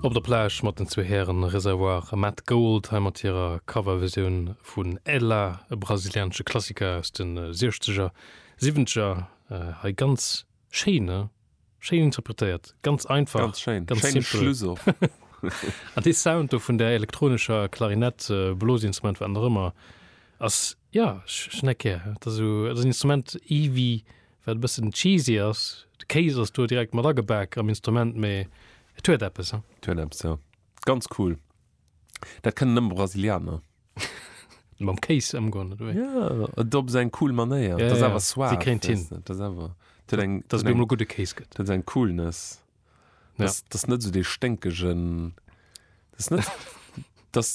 Op der Plage mat den zwee Hären Reservoir a Matt Gold, hei mat hirer Coverversioun vun Ela, e brasilianesche Klassiker aus den Siechzeger, Siwwenzeger. Hei ganz schéin, ne? Schéin interpretéiert, ganz einfach, ganz schéin, ganz schéine simpel. Schluss och. An dee Sound do vun där elektronescher Klarinett, Blosinstrument, wat nach ëmmer, ass, ja, ech hunn dat gär. Dat ass esou, dat ass en Instrument, ewéi Wat e bëssen cheesy ass, de Kéis ass do direkt mat agebak am Instrument, mee et huet eppes, hein. Et huet eppes, jo. Ganz cool. Dat kënnen nëmme Brasilianer. Mam Kéis ëmgoen, oder wéi? Ja, et op seng cool Manéier. Et ass awer suave. Si kréint hin. Et ass awer, et huet eng. Dass et emol gudde Kéis gëtt. Et huet eng Coolness. Et ass net esou dee sténkegen, et ass net, et ass.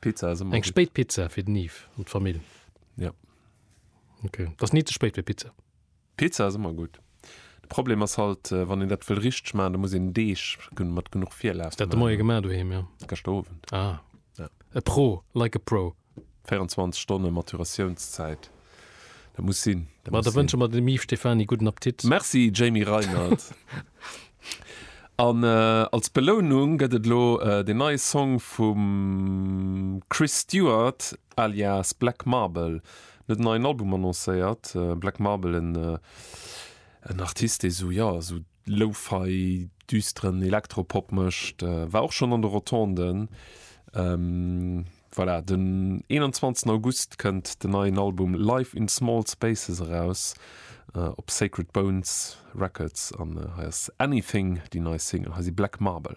Pizza ass ëmmer Eng gutt. spéit Pizza fir den Yves an d'Famill. Ja. Ok. Et ass ni ze spéit fir Pizza. Pizza ass ëmmer gutt. De Problem ass halt, wann een dat wëll richteg maachen, da muss een Deeg gen mat genuch Virlaf Hues dat de Moie maachen. gemaach doheem, jo? Geschter Owend. Ah. Ja. E Pro, like a pro. 24 Stonne Maturatiounszäit. Dat muss sinn. Ma da wënsche mer dem Yves Stephany gudden Appetit. Merci, Jamie Reinert. An als Belounung gëtt et elo deen neie Song vum Chris Stewart alias Black Marble. En huet en neien Album annoncéiert. Black Marble, en Artist, dee sou, jo, sou Lo-Fi, düsteren Elektropop mécht. War och schonn an de Rotonden. Voilà, den 21 August kënnt den neien Album Life in Small Spaces eraus op Sacred Bones Records an hei ass Anything déi nei Single. Hei si Black Marble.